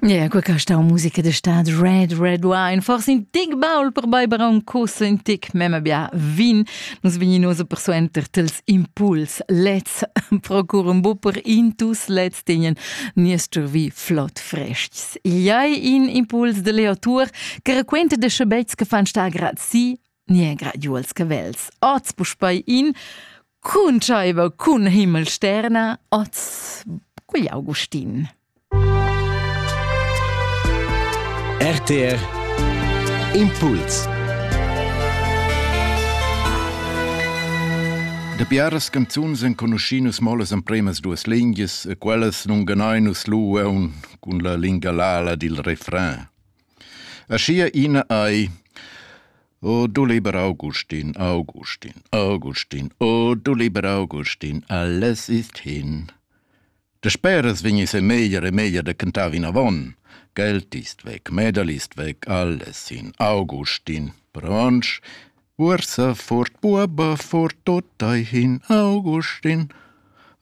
Yeah, qua ca sta musica de stad Red Red Wine, forse in tic baul per beiber un cus in tic mema bia vin. Nus vegninos per suenter tels impuls lets procur un bu per intus lets tenien niestr vi flot frestgs. Iai in impuls de Leo Tour, che raquenta de schebets che fan sta grazi Nie graduals cavels, oz puspei in cuntschaiva cun Himmelsterna, oz quegl Augustin. RTR Impuls Da biaras canzuns enconuschin nus mo las empremas duas lingias e quellas nun ganain nus lu aun cun la linga lala dil refrain. Aschia ina ei. O du liber Augustin, Augustin, Augustin, o du liber Augustin, alles ist hin. De speras vegnis e meglier e meglier de cantar vinavon. Geld ist weg, medal ist weg, alles in Augustin. Pronsch, Ursa fort buaba fort totai hin Augustin.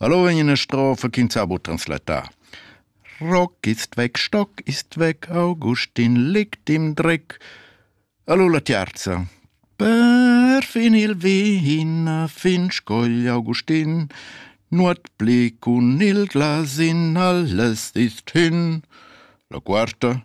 Allo in eine Strophe ch'ins ha bu translatar. Rock ist weg, Stock ist weg, Augustin liegt im Dreck. Allo la tiarza. Per fin il vin a fin scogl Augustin, nuot pli cun il glasin, alles ist hin. La quarta.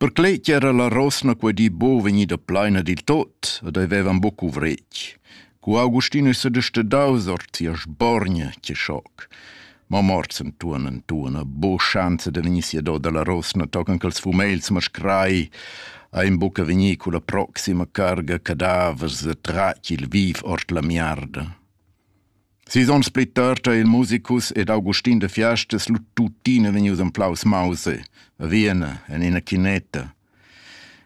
Perclei ch'era la rosna quei di buc vegnida pleina dil tot ed ei vevan buc cuvretg. Cu Augustin ei sedestaus ord sia sborgna che schoc. Ma morts entuorn entuorn ha buc schanza da vegnir siador dalla rosna tochen ch'ils fumegls mascrai ein buca vegnir culla proxima carga cadavers e tratg il viv ord la miarda. Sis ons pli tard ha il musicus ed Augustin de Fiastas lu tuttina vegnius emplaus mausa a Vienna en ina chinetta.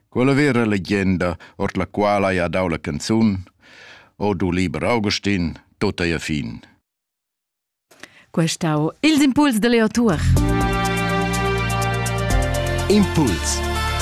Quella vera legenda, ord la quala ei ha dau la canzun O du liber Augustin, tot ei a fin. Quest au ils impuls de Leo Tuor. Impuls